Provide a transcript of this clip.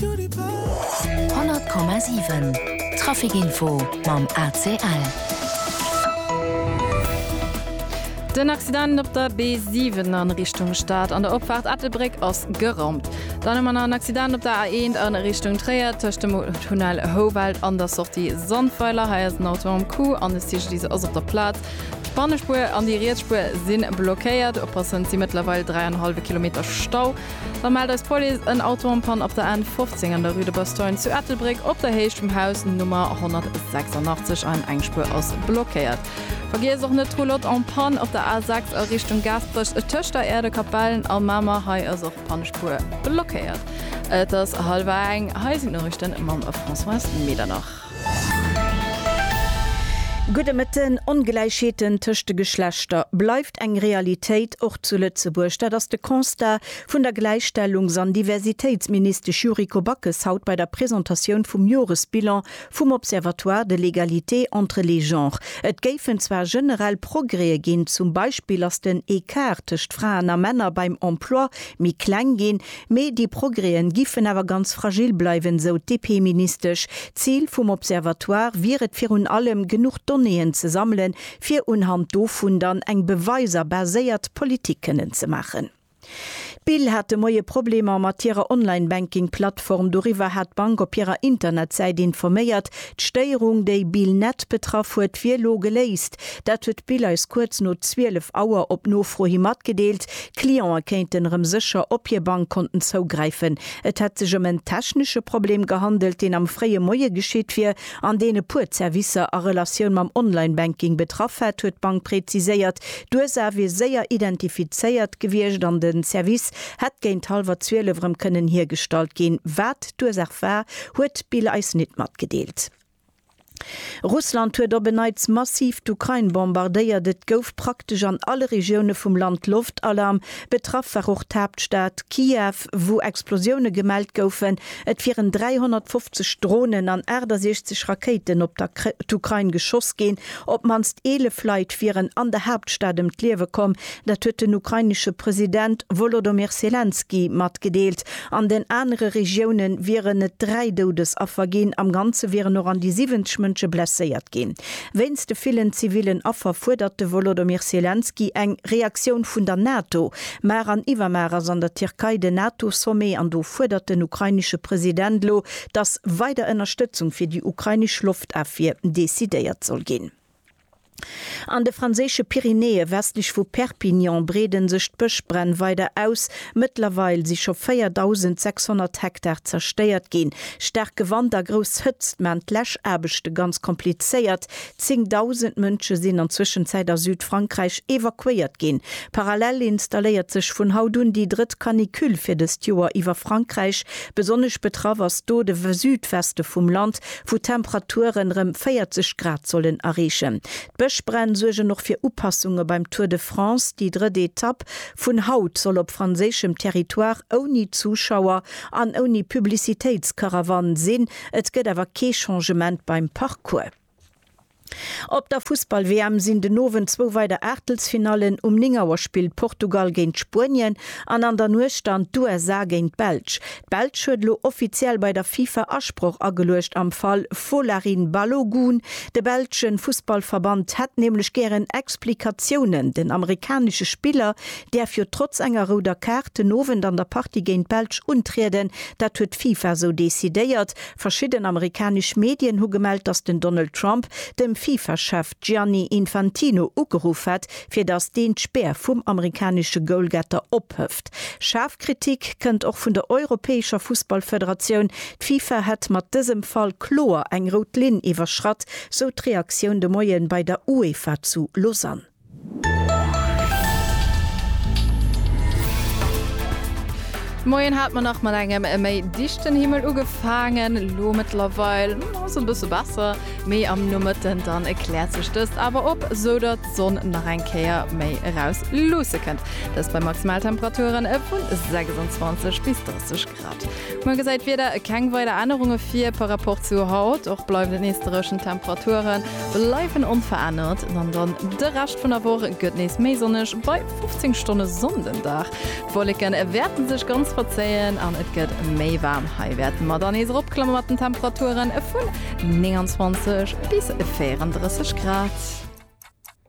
100,7 Trafic-Info mam ACL. Den Accident op der B7 a Richtung Stad an der Opfaart Ettelbréck ass geraumt. Dann hu mer nach en Accident op der A1 a Richtung Tréier tëscht dem Tunnel Houwald an der Sortie Sandweiler. Hei ass en Auto am Coup an de CGDIS ass op der Plaz. D'Bannespuer an déi riets Spuer si blockéiert. Oppassen, Et si mëttlerweil dräi an e hallwe Kilometer Stau Da mellt eis d'Police en Auto en panne op der N 15 an der Rue de Bastogne zu Ettelbréck op der Héicht vum Haus Nummer 186 an eng Spuer ass blockéiert. Vergiesst och net d'Roulotte en panne op der A 6 a Richtung Gaasperech tëscht der Aire de Capellen a Mamer, hei ass och d'Pannspuer blockéiert. Et ass hallwer eng, hei sinn d'Noriichten mam Françoise Medernach. Gudde Mëtten, Ongläichheeten tëscht de Geschlechter bleift eng Realitéit, och zu Lëtzebuerg. Dat ass de Constat vun der Gläichstellungs an Diversitéitsministesch Yuriko Backes haut bei der Presentatioun vum Joresbilan vum Observatoire de l'égalité entre les genres. Et géifen zwar generell Progrèe ginn, zum Beispill ass den Ecart tëscht Fraen a Männer beim Emploi méi kleng ginn, Mee déi Progrèen giffen awer ganz fragil bleiwen, sou d'DP-Ministesch. D'Zil vum Observatoire wier et virun allem, genuch Donnéeën ze sammelen, fir unhand dovun dann eng beweiser baséiert Politik kënnen ze maachen. D'Bill hat de Moie Problemer mat hirer Online-Banking-Plattform. Doriwwer hat d'Bank op hirer Internetsäit informéiert. D'Stéierung, déi Bill Net betraff huet, wier elo geléist. Dat huet d'Bild eis kuerz no 12 Auer op Nofro hi matgedeelt. Cliente kéinten erëm sécher op hir Bankkonten zougräifen. Et hätt sech ëm en technesche Problem gehandelt, deen am fréie Moie geschitt wier an deen e puer Zerwisser a Relatioun mam Online-Banking betraff hätt, huet d'Bank präziséiert. D'Ursaach wier séier identifizéiert gewiescht an de Service hätt géint hallwer 12 erëm kënnen hiergestallt ginn. Wat d'Ursaach war, huet d'Bild eis nit matgedeelt. Russland huet op en Neits massiv d'Ukrain bombardéiert. Et gouf praktesch an alle Regioune vum Land Loftalarm. Betraff war och d'Haaptstad Kiew, wou Explosioune gemellt goufen. Et wieren 350 Dronen an 68 Rakéiten op d'Ukrain geschoss ginn. Op d'mannst 11 Leit wieren an der Haaptstad ëm d'Liewe komm. Dat huet den ukrainesche President Wolodomyr Selenskyj matgedeelt. An den anere Regioune wieren et dräi Doudesaffer ginn. Am Ganze wieren och an déi 70 Mënsche blesséiert ginn. Wéinst de villen zivillen Affer fuerdert de Wolodomyr Selenskyj eng Reaktioun vun der NATO. Mar an iwwermar ass an der Tierkei den NATO-Sommet an do fuerdert den ukrainesche President elo, datt weider Ënnerstëtzung fir déi ukrainesch Loftafwier decidéiert soll ginn. An de franséische Pyrenäe westlech vu Perpignan breede sech d'Bëschbränn weider aus. Mëttlerweil si scho 4.600 Hektar zerstéiert ginn. Staarke Wand a grouss Hëtzt maachen d'Läschaarbechte ganz komplizéiert. Zéngdausend Mënsche sinn an Zwëschenzäit a Südfrankräich evakuéiert ginn. Parallel installéiert sech vun haut un déi drëtt Canicule fir dëst Joer iwwer Frankräich. Besonnesch betraff ass do de Südweste vum Land, wou d'Temperaturen rem 40 Grad sollen areechen. D'Bëschbränn suergen och fir Upassunge beim Tour de France. Déi drëtt Etapp vun haut soll op franséischem Territoire ouni Zuschauer an ouni Publicitéitskarawann sinn. Et gëtt awer kee Changement beim Parcours. Op der Fussball-WM sinn den Owend zwou weider Aachtelsfinallen, um 9 Auer spillt Portugal géint Spuenien an an der Nuecht dann d'USA géint d'Belsch. D'Belsch huet elo offiziell bei der FIFA Asproch ageluecht am Fall Folarin Balogun. De belsche Fussballverband hätt nämlech gären Explikatiounen. Den amerikanesche Spiller däerf jo trotz enger rouder Kaart den Owend an der Partie géint d'Belsch untrieden. Dat huet d'FIFA esou decidéiert. Verschidden amerikanesch Medien hu gemellt, datt den Donald Trump dem FIFA-Chef Gianni Infantino ugeruff hätt, fir datt deen d'Spär vum amerikanesche Goalgetter ophëft. Schaarf Kritik kënnt och vun der europäescher Fussballfederatioun. D'FIFA hätt mat dësem Fall kloer eng rout Linn iwwerschratt, sou d'Reaktioun de Moien bei der UEFA zu Lausanne. D'Moien hat mer nach mat engem méi dichten Himmel ugefaangen, elo mëttlerweil ass et e bësse besser, mee am Nomëtten dann kläert sech dëst awer op, sou datt d'Sonn nach eng Kéier méi eraus luusse kënnt, dëst bei Maximaltemperaturen vu 26 bis 30 Grad. Muer gesäit d'Wieder keng weider Ännerunge vir par Rapport zu haut. Och bleiwen et nees dréchen. D'Temperature bleiwen onverännert an dann de Rescht vun der Woch gëtt nees méi sonneg bei 15 Stonne Sonn den Dag. D'Wolleke wäerte sech ganz verzéien an et gëtt méi waarm. Hei wäerte mer dann nees eropklamme mat den Temperature vun 29 bis 34 Grad.